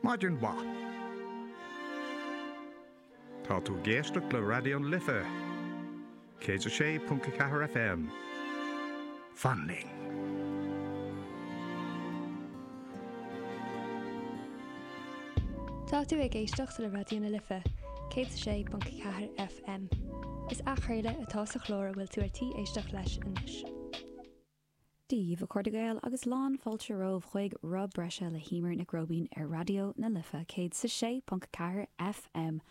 Maidin mhaith. Tá tú ag éisteacht le Raidió na Life, 106.4 FM, Fan Linn. Tá tú ag éisteacht le Raidió na Life, 106.4 FM. Is athchraoladh atá sa chlár a bhfuil tú ar tí éisteacht leis anois. Dia daoibh a chairde Gael agus lán fáilte romhaibh chuig Rogha Bhreise le hEimear Nic Róibín ar Raidió na Life 106.4 FM.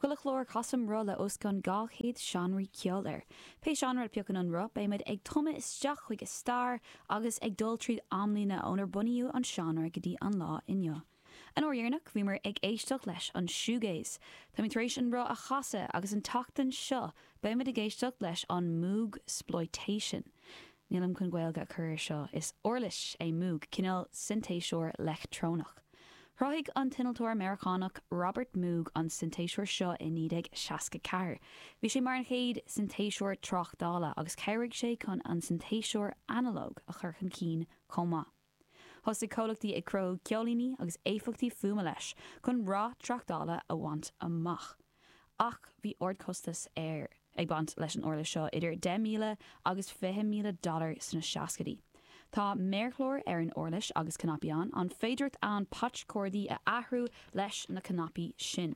Chuile chlár casaim roth le os cionn 200 seánraí ceoil air. Pé seánra a phiocann an roth beimid ag tumadh isteach chuig a stair agus ag dul tríd amlíne ó bunaíodh an seánra go dtí an lá inniu. An uair dheireanach bhíomar ag éisteacht leis an shoegaze. Táimid tar éis an roth a chasadh agus an tseachtain seo beimid ag éisteacht leis an moogsploitation. Nílim chun Gaeilge a chur air seo, is uirlis é moog, cineál sintéiseoir leictreonach. Chruthaigh an t-innealtóir Meiriceánach Robert Moog an sintéiseoir seo i 1964. Bhí sé mar an chéad sintéiseoir tráchtála agus chabhraigh sé chun an sintéiseoir analóg a chur chun cinn chomh maith. Thosaigh comhlachtaí ag cruthú ceoilíní agus éifeachtaí fuaime leis chun rath tráchtála a bhaint amach. Ach bhí ardchostas ag baint leis an uirlis seo, idir 10,000 agus 20,000 dollar sna seascaidí. Tá méarchlár ar an uirlis agus cnaipí ann, an féidireacht ann patch cordaí a athrú leis na cnaipí sin.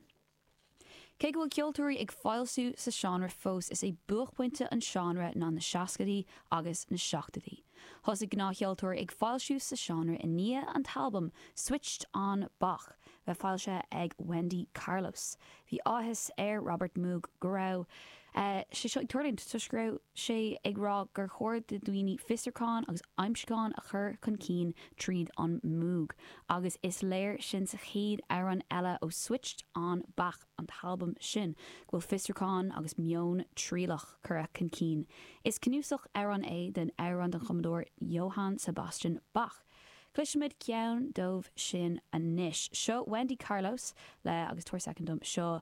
Cé go bhfuil ceoltóirí ag foilsiú sa seánra fós, is é buaicphointe an seánra ná na seascaidí agus na seachtaidí. Thosaigh gnáthcheoltóirí ag foilsiú sa seánra i ndiaidh an t-albam Switched On Bach bheith foilsithe ag Wendy Carlos. Bhí áthas ar Robert Moog go raibh sé seo ag tarlúint toisc go raibh sé ag rá gur chóir do dhaoine fiosrúchán agus aimsiúchán a chur chun cinn tríd an Moog, agus is léir sin sa chéad amhrán eile ó Switched On Bach, an t-albam sin, go bhfuil fiosrúchán agus meon trialach curtha chun cinn. Is cnuasach amhrán é den amhrán den chumadóir Johann Sebastian Bach. Cloisfimid ceann díobh sin anois. Seo Wendy Carlos le, agus tabhair soicind dom, seo